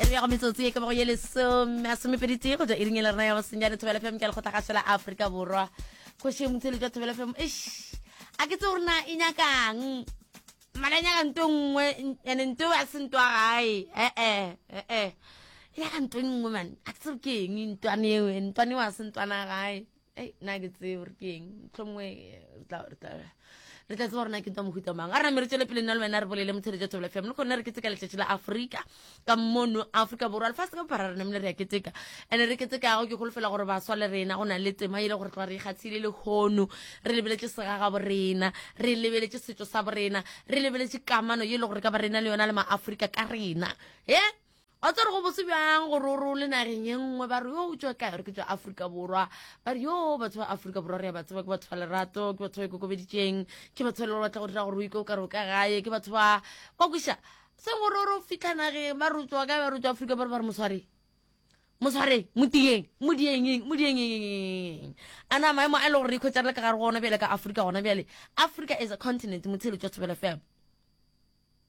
e re ya go metsotsi e ka bago ye lesome a somepeditee go ja iring e le rena ya bosenyane thobela fm ka lekgotla gašo la aforika borwa kgošeng motsheletso wa thobela fm eish a ke tse gore na e nyakang mala e nyaka nto e nngwe ande nto a se nto a gae ee ee e nyaka nto e nngwe mane a ke tse gore ke eng ntwane eo ntwane eo a se ntwana gae ei nna ke tsee gore ke eng tlhongwe re tla tseba gorena ke ntwa mohuta mang a re name re tswele pele nna le wena re bolele motshedi ja thobela fm le kgone re keteka letšatši la aforika ka mono aforika borwa lefase ka bophara re namele re ya keteka and-e re ketekago ke golofela gore baswa le rena go na le tema e le gore tloga re ikgatshile le kgono re lebeletše segaga borena re lebeletše setšo sa borena re lebeletše kamano ye e le gore ka ba rena le yona le maaforika ka rena e Wa tswa re go bose bjang gore o role nageng e nngwe ba re yo o tswa kae re ke tswa Afrika Borwa ba re yo batho ba Afrika Borwa re ya ba tseba ke batho ba lerato ke batho ba ikokobeditseng ke batho ba le batla go dira gore o ike o ka re o ka gae ke batho ba wa kweša se gore o re o fitlha nageng ba re o tswa kae ba re o tswa Afrika Borwa ba re mosware mosware motiyeng modiengeng modiengeng a na maemo a e le gore re ikhwetsa re le ka gare go ona bjale ka Afrika gona bjale Africa is a continent motshelo tswa thobela fela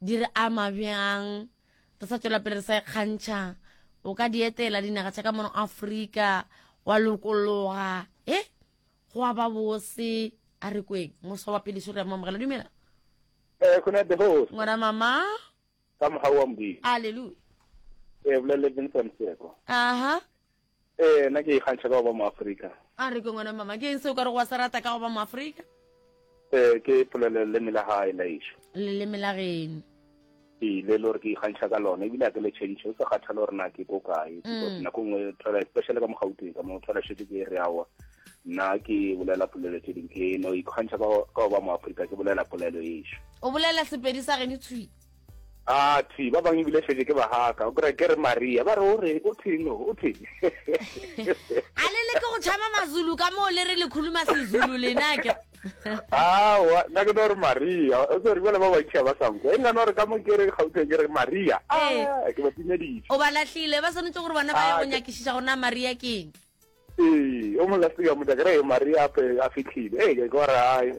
di re ama bjang re sa tšwela pele re sa ikgantšha o ka di etela dinaga tša ka mono afrika wa lokologa e go a ba bose a re kweng moso wa pele sore ya mamogela dumela eh, ngwana mama ka moga wa modimo aleluya e eh, boleletseng sonseko aha Ee, nna ke ikgantšha ka go ba mo-Afrika. A re, Ke ngwana mama. Ke eng seo o ka rego wa se rata ka go ba mo-Afrika? Ee, ke polelo leleme la gae la ešo. Leleme la geno. Ee, le e le gore ke ikgantšha ka lona ebile a ke le tšhentšhe go sa kgathale gore na ke ko kae because nako nngwe thola especially ka mogauteng ka mo thola šete ke re awa nna ke bolela polelo tse ding ke no ikgantšha ka go ba mo-Afrika ke bolela polelo ešo. O bolela Sepedi sa geno tshwi. Athe, ba bangwe ebile šetše ke bahaka. O kry ke re Maria, ba re o re, o theng o, o theng. A le leke go tšhaba Mazulu ka moo le re le khuluma Sezulu lena ke. Aowa, nna ke no re Maria. O tsere jale ba bantši ga ba sa nkwa. E nna no re ka mo ke re Gauteng ke re Maria. Ah, ke ba timeditše. O ba lahlile, ba swanetše gore bona ba ye go nyakišiša gore na Maria ke eng. Ee, o mo last ka motla kere Maria ape a fitlhile. Ee, ke gore ai.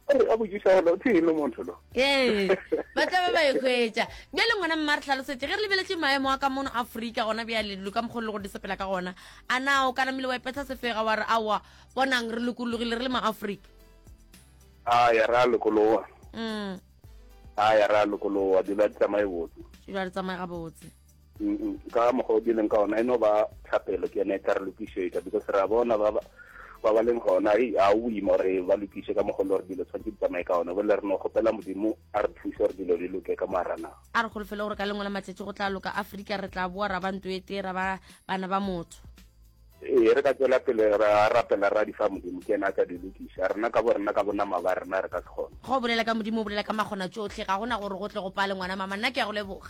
O re a botšiša gore o thile motho lo. Ee, ba tla ba ba ekhwetša. Bjale ngwana mma re tlhalosetse ge re lebeletše maemo a ka mono Afrika gona bjale dilo ka mokgolo go di sepela ka gona. A na o kana mile wa ipetha sefega wa re aowa bonang re lokologile re le ma Afrika. A ya ra lokologa. Mm. A ya ra lokologa dilo a tsamaye botse. Dilo a tsamaye ga botse. ka mokgwa o di leng ka ona e no ba thapelo ke yone e ka re lokišetša because ra bona ba ba ba leng gona e a o ima gore ba lokiše ka mogolo gore dilo tshwanetse di tsamaye ka one bole re no kgopela modimo a re thuse gore dilo di loke ka moarana a re golofele gore ka lengwe la matsatsi go tla loka aforika re tla boa ra ba nto e tee ra ba bana ba motho ee re ka tswela pele ra rapela ra di fa modimo ke ena a ka di lokisa rena ka bo rena ka bonama ba rena re ka se kgone go bolela ka modimo o bolela ka magona tsotlhe ga gona gore go tle go pale ngwana mama nna ke ya go leboga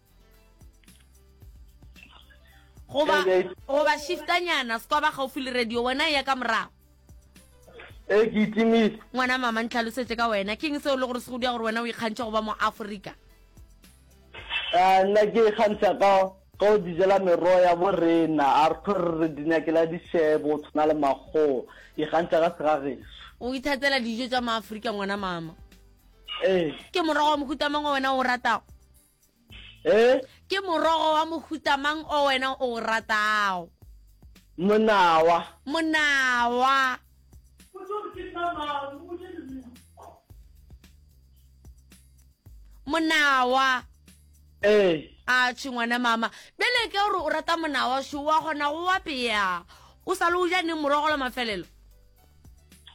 goba goba shiftanyana se kwa ba gaufi le radio wena e ya ka morago e ke itimile ngwana mama ntlhalosetse ka wena keng seo le gore se go dia gore wena o ikgantšha go ba mo aforika a nna ke ikgantšha ka ka o dijela merogo ya bo rena a re kgore re di nyakela dishebo o tshwana le makgoo ikgantšha ka segageso o ithatela dijo tsa maaforika ngwana mama ee ke morago wa mohutamangwe wena o ratago Eh? Ke morogo wa mohuta mang o wena o o ratago? Monawa. Monawa. Monawa. Eh. A tshingwana mama. Bele ke gore o rata monawa sho wa gona go wa peya. O sa le o ja neng morogo la mafelelo?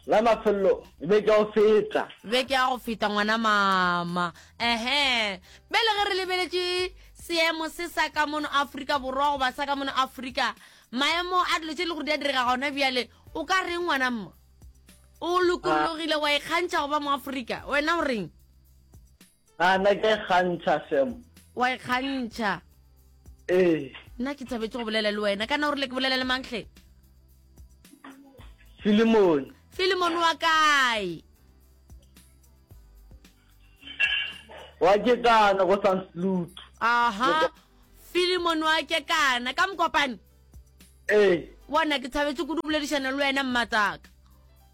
La mafello beke ya go feta. Beke ya go feta ngwana mama. Ehe. Bele ge re lebeletše seemo se sa ka mono Afrika Borwa goba sa ka mono Afrika, maemo a dilo tše le gore di a direga gona bjale, o ka reng ngwana mma? O lokologile wa ikgantšha go ba mo Afrika. Wena o reng? A na ke kgantšha Sam? Wa e kgantšha? Ee. Nna ke thabetše go bolela le wena. Kana o rile ke bolela le mang hle? Filimone. Filimone wa kae? Wa ke kana go San Sloot. Aha. Filimone wa ke kana ka mokopane? Ee. Bona ke thabetše kudu boledišana le wena mmatsaka.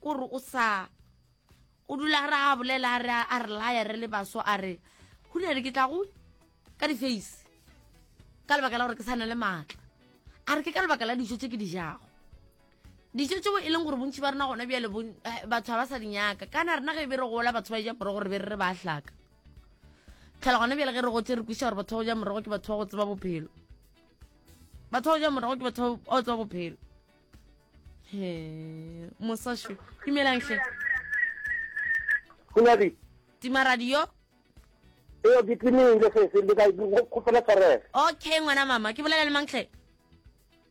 O re o sa o dula a re a bolela a re a re laya re le baso a re go ne re ke tla go ka di-face ka lebaka la gore ke sa na le maatla a re ke ka lebaka la dijo tse ke di jago dijo tseo e leng gore bontši ba rena gona bjale eh, batho ga ba sa di nyaka kana rena ge e be re gola batho ba ja morogo re be re re ba hlaka tlhela gona bjale ge re gotse re kwisa gore batho ba go ja morogo ke batho ba go tseba bophelo batho ba go ja morogo ke batho ba go tseba bophelo he mosasho dumelang hle Kunadi. tima radio eo ke timeng le sese le ka kgopela tshwarelo okay ngwana mama ke bolela le mang hle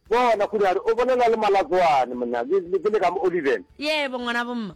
bona kunadi o bolela le malatswane monna ke le ka mo oliven yebo ngwana bomma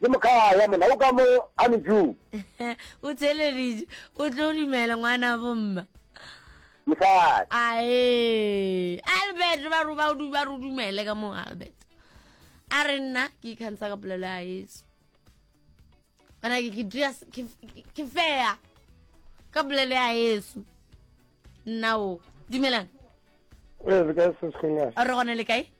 Ke mokhaa ya mona, o ka mo a ne juu. O tseleditše, o tlo dumela ngwana bomma. Mosadi. Aee, Albert, ba ro ba o ba ro dumele ka mo Albert. A re nna ke ikhantsha ka polelo ya Yesu. Bana ke ke dira ke fair ka polelo ya Yesu. Nna o dumelang. Re gone le kae?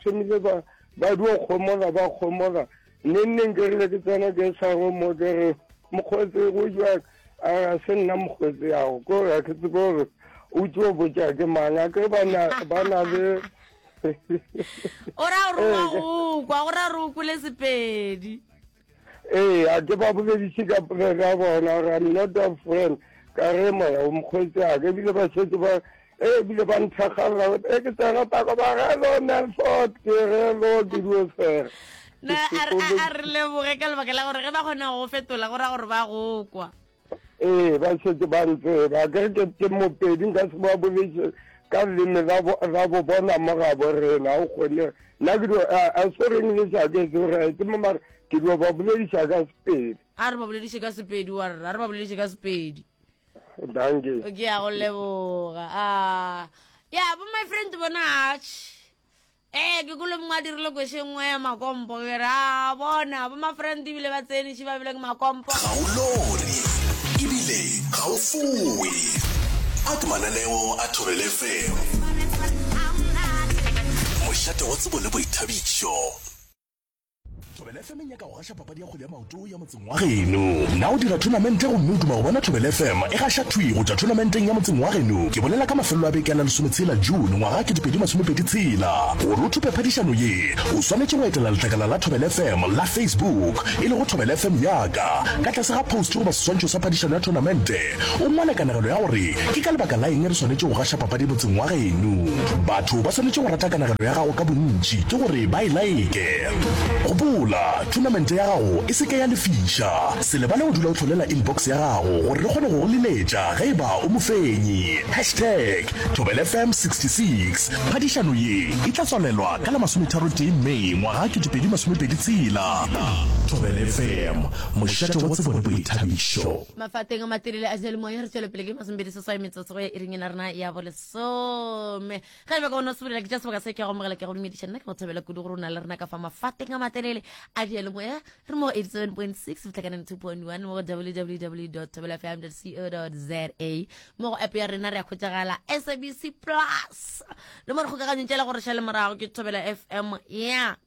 tshwanile ba ba dio kgomola ba kgomola nne nne nkerile ke tsena ke sa go mo ke re mokgotsi go jwa a ga se nna mokgotsi yago ko ga ke tsebe gore o tso botsa ke mang a ke ba na ba na le o ra o roa go kwa o ra ro kule sepedi Eya, ke ba bolediše ka pula ka bona, ra not a friend, ka re moya o mokgwetsaka, ebile ba setse ba e bile ba nthagalela gote e ke tsena tako ba re lo melford ke re lo dirio fela na a re leboge ka lebaka la gore ge ba kgona go fetola go ra gore ba go kwa Ee, ba setse ba ntseba a kere ke ke mopedi nka se ba bolese ka leme la bo bona mo ga bo rena o kgone nna ke do a so reng le sa ke se re ke mo mara ke do ba bolelisa ka sepedi a re ba bolelise ka sepedi wa rra a re ba bolelise ka sepedi danke ke ya go leboga a ya bo my friend bona ee ke kolo mongwe a dirile kwešo e nngwe ya makompo ke re a bona bo mafrante ebile ba tsene šiba ebile ke makompo ga o lore ebile ga o fowe a ke mananeo a thobele fm mošate wa tsebo le boithabišo Thobela FM e nyaka go gaša papadi ya kgwele ya maoto ya motseng wa geno. Na o dira thonamente gomme o duma go bona Thobela FM e gaša thwi go tšwa thonamenteng ya motseng wa geno? Ke bolela ka mafelelo a beke a la lesometshela June ngwaga ke dipedi masomepedi tshela. Gore o thupe phadišano ye, o swanetše go etela letlakala la Thobela FM la Facebook e lego Thobela FM Yaka. Ka tlase ga post goba seswantšho sa phadišano ya thonamente, O nngwe a na kanegelo ya gore ke ka lebaka la eng re swanetše go gaša papadi motseng wa geno. Batho ba swanetše go rata kanegelo ya gago ka bontši ke gore ba e like. Gopola, thunamente ya gago e se ke ya lefiša. Se lebale go dula o hlolela inbox ya gago gore re kgone go go liletša ge e ba o mofenyi. Hashtag ThobelFM 66 Phadišano ye e tla tswalelwa ka la masometharotee May ngwaga 2026. ThobelFM, mošate wa tsebo le boithabišo. mafateng a matelele a seyalemoya re tswele pele ke masomebedi seswai metsotso go ya iring ena rena ya bo lesome ga eba ka ona sobelela ke tša sebaka se ke go amogela ke go dumediša nna ke go thabela kudu gore o na le rena ka fa mafateng a matelele a diyalemoya re mo go 87.6 fitlhakaneng 2.1 mo go www tabelafm co za mo go app ya rena re ya kgwetsagala sabc plus le mo re kgokaganyong tšela gore šale morago ke thobela fm ya yeah.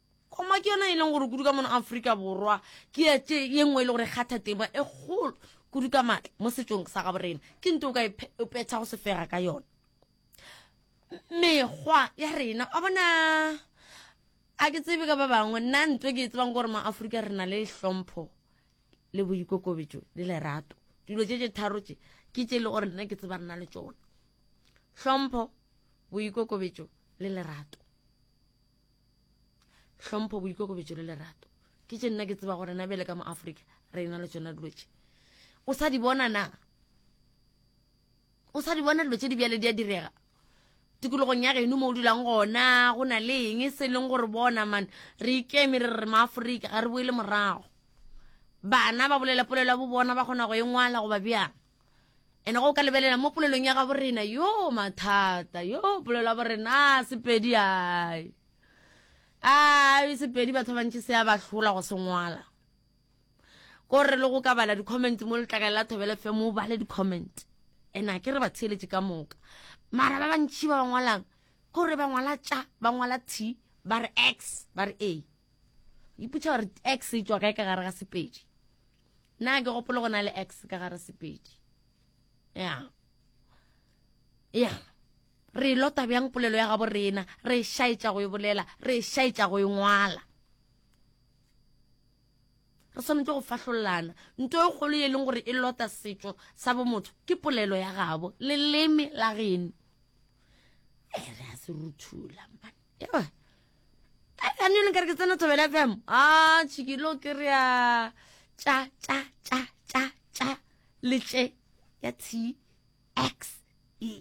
Kgoma ke yona e leng gore kudu ka mono Afrika Borwa ke ya tše ye nngwe e le gore e kgatha tema e kgolo kudu ka maatla mo setšong sa gabo rena. Ke nto o ka e petha go sefega ka yona mekgwa ya rena a bona a ke tsebe ka ba bangwe nna nto ke e tsebang gore maaforika re na le hlompho le boikokobetso le lerato dilo tše tše tharo tše ke tše e le gore nna ke tseba rena le tsona hlompho boikokobetso le lerato hlompho boikokobetso le lerato ke tše nna ke tseba gore na bjale ka mo africa re na le tsona dilo tše o sa di bona na o sa di bona dilo tše di bjale di a direga tikologong ya geno mo o dulang gona go na le eng e se leng gore bona mane re ikeme re re maaforika ga re boele morago bana ba bolela polelo ya bo bona ba kgona go e ngwala goba bjang ene go ka lebelela mo polelong ya gabo rena yo mathata yo polelo ya borena sepedi ai ai sepedi batho ba bantši se ya ba hlola go se ngwala ko re le go ka bala di-comment mo letlakale la thobele fe mo bale di-comment ene a ke re ba theeletše ka moka mara ba bantši ba ba ngwalang ko re ba ngwala tša ba ngwala t ba re x ba re a iputša gore x e tswa kae ka gare ga sepedi Na ke gopolo go na le X ka gare sepedi. Yeah. Yeah. Re lota bjang polelo ya gabo rena, re shaetša go e bolela, re shaetša go e ngwala. Re swanetše go fahlolana. Nto e kgolo e leng gore e lota setšo sa bomotho ke polelo ya gabo, leleme la geno. Eh, re a se ruthula man. Yeah. anyo le nkare ke tsena thobela fm a tšhikilo ke re ya tša tša tša tša tša letle ya t x e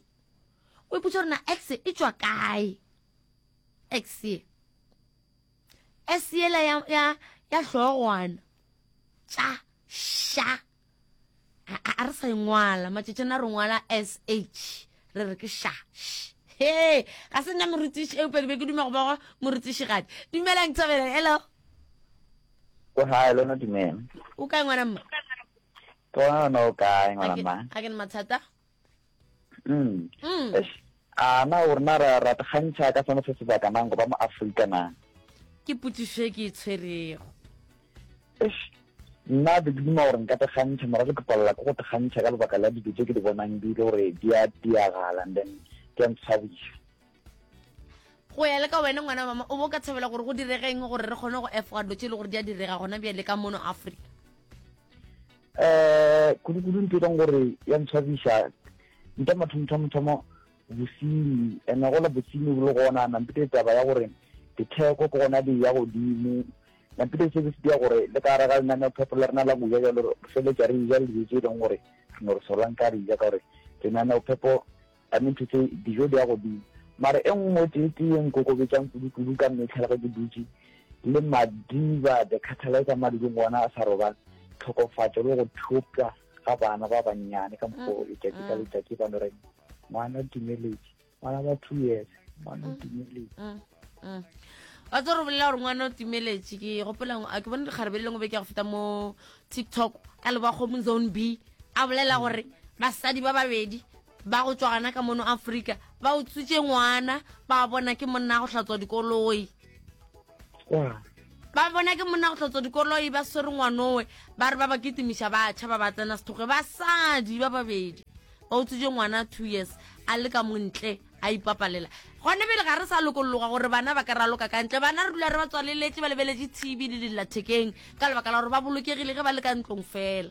o ipotsa gore na x e tswa kae x e s yela ya ya ya hlogwana tša sha a re sa engwala matšetšana re ngwala sh re re ke sha he ga se nna morutiši eupedi be ke dume go bogo morutiši gadi dumelang thabela hello o hae lona dumela o kae ngwana mma ke gona gona o kae ngwana mma ga ke ne mathata Mm. Mm. Eish, a na o rena ra ra kgantšha ka sone se sebaka nang go ba mo aforika na ke potsiso e ke e tshwerego eish nna be ke duma gore nka tekgantšha mara ke tlopalela ke go tekgantšha ka lebaka la dilo tse ke di bonang di le gore di a diagala and then ke a ntshwabisa go ya le ka wena ngwana wa mama o bo ka thabela gore go diregeng gore re kgone go efoga dilo tse e le gore di a direga gona bjale ka mono africa um kudu-kudu nto e leng gore ya ntshwabisa nta mathomothamothomo bosenyi ene gola bosenyi bo le gona nampete taba ya gore ditheko ke gona di ya godimo nampete se se dira gore le ka gare ga lenaneo phepho le rena la kuja jalo re feletsa re ija le dijo tse e leng gore re ne re solwang ka re ija ka gore lenaneo phepho Ka nnete tše dijo di ya godimo. Mara e nngwe tee tee e nkokobetšang kudu kudu ka mehla le ge ke dutše le Madiba the catalyzer mo a dudung gona a sa robale, tlhokofatšo le go thopša ga bana ba bannyane ka mokgwa o letšatši ka letšatši ba no reng, Ngwana Timeletše, ngwana ba two years, ngwana Timeletše. Wa tse re bolela gore ngwana o timeletše ke gopelang a ke bone dikgarebe le lengwe be ke ya go feta mo tiktok ka leba kgomo zone b a bolela gore basadi ba babedi ba go tšwa gana ka mono afrika ba o tsutše ngwana ba bona ke monna go hlatswa dikoloi ba bona ke monna go hlatswa dikoloi ba swere ngwanowe ba re ba ba kitimiša ba tšha ba ba tsena sethoge basadi ba babedi ba o tsutše ngwana two years a le ka montle a ipapalela gone pele ga re sa lokologa gore bana ba ka ra loka ka ntle bana re dula re ba tswaleletse ba lebeletse tv le dillathekeng ka lebaka la gore ba bolokegile ge ba le ka ntlong fela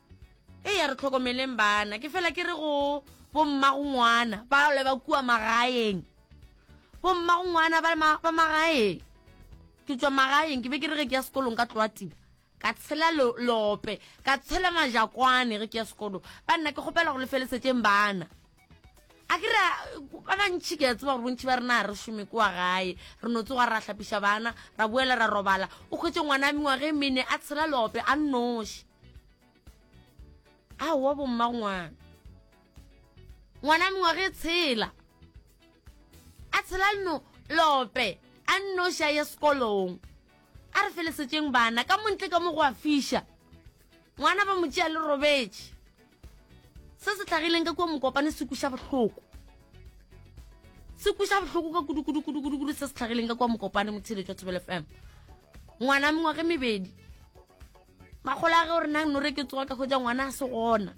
e ya re tlhokomeleng bana ke fela ke re go bommagongwana ba le ba kua magaeng bommagongwana ba magaeng ke tswa magaeng ke be ke re ge ke ya sekolong ka tloa tiba ka tshela lope ka tshela majakwane ge ke ya sekolo ba nna ke kgopela go lefelesetšeng bana a ke re ba bantšhi ke a tseba gore bontšhi ba rena ga re šome kwa gae re no tsoga ra hlapiša bana ra boela ra robala o kgwetse ngwana a mengwage e mene a tshela lope a nnoši a wa bomma ngwana ngwana a mengwage e tshela a tshela lope a nnoši a ye sekolong A re felesetšeng bana, ka mo ntle ka mo go a fiša. Ngwana ba mo tšea le robetše. Se se hlagileng ka kua Mokopane se kuša bohloko. Se kuša bohloko ka kudu-kudu-kudu-kudu-kudu se se hlagileng ka kua Mokopane, Motheeletšwa Thobela FM. Ngwana mengwaga e mebedi. makgolo a ge o re nang nore ke tsoga ka hwetsa ngwana a se gona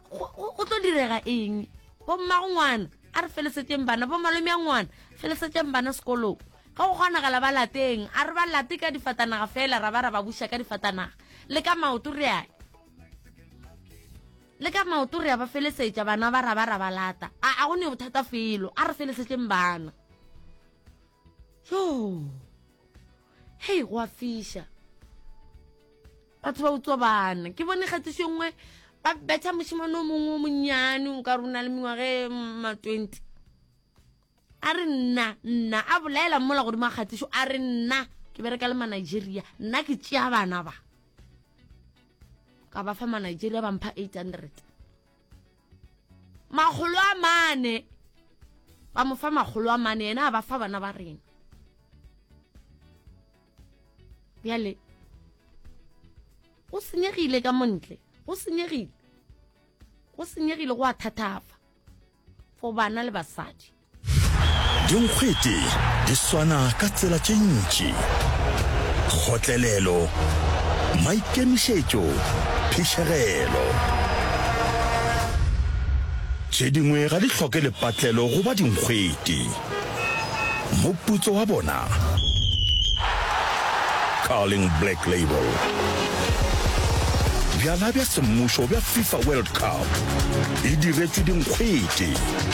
go tlo direga eng bommago ngwana a re felesetšeng bana bomalome a ngwana felesetšeng bana sekolong ge go kgonagala ba lateng a re ba late ka difatanaga fela ra ba ra ba buša ka difatanaga le ka maoto re a le ka maoto re a ba felesetša bana ba ra ba ra ba lata a go ne bothata felo a re felesetšeng bana yoo hei go a fiša batho ba utswa bana ke bone kgatiso e nngwe ba betha mošemane o mongwe o monnyane o ka rona le mengwage ma twenty a re nna nna a bolaela mola godimo a kgatiso a re nna ke bereka le manigeria nna ke tšea bana ba ka ba fa manigeria ba mpha eight hundred makgolo a mane ba mo fa makgolo a mane yena a ba fa bana ba rena bjale go senyegile ka montle go senyegile go senyegile go a thathafa for bana le basadi Dinkgwete di swana ka tsela tše ntši, kgotlelelo, maikemišetšo, phišegelo. Tše dingwe ga di hloke lepatlelo go ba dinkgwete. Moputso wa bona, Carling Black Label. Bjala bja semmušo bja FIFA World Cup e diretšwe dinkgwete.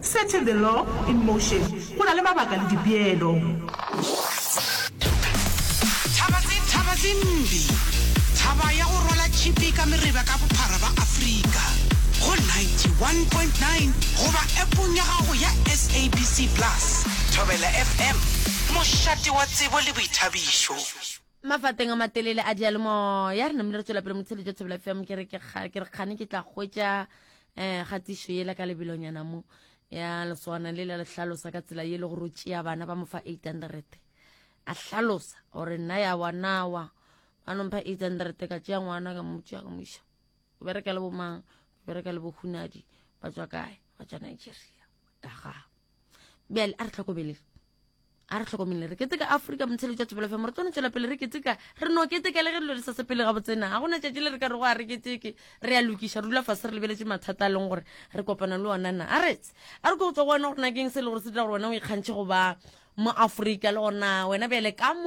Setting the law in motion, go na le mabaka le dipeelo. Thabazin Thabazin Mbi, thaba ya go rwala tšhipi ka mereba ka bophara ba Afrika, go 91.9 goba Appong ya gago ya SABC Plus. Thobela FM, mošate wa tsebo le boithabišo. Mafateng a matelele a diyalemoya re namile re tšwela pele motheletšo Thobela FM ke re ke kgane ke tla hwetša um kgatišo yela ka lebelonyana mo ya leswana le la le hlalosa ka tsela ye le gore o tšea bana ba mo fa eight hundred a hlalosa gore nna ya wanawa ba nompha eight hundred ka tšea ngwana ka motšea ka moša o bereka le bomang o bereka le bohunadi ba tswa kae ba tswa nigeria ka gago bjale a re tlhokomele a re tlhokomele re keteka afrika motsheletša tšebolofe mo re tsone tswela pele re keteka re no keteka le ge dilo di sa sepele ga botsena ga gona tšatši le re ka re go a re keteke re a lokiša rula fase re lebeletše mathata a leng gore re kopana le ona na a retse a re ko go tswa go wena gore nakeng se e le gore se dira gore wena o ikgantšhe go ba mo afrika le gorena wena bjale ka mo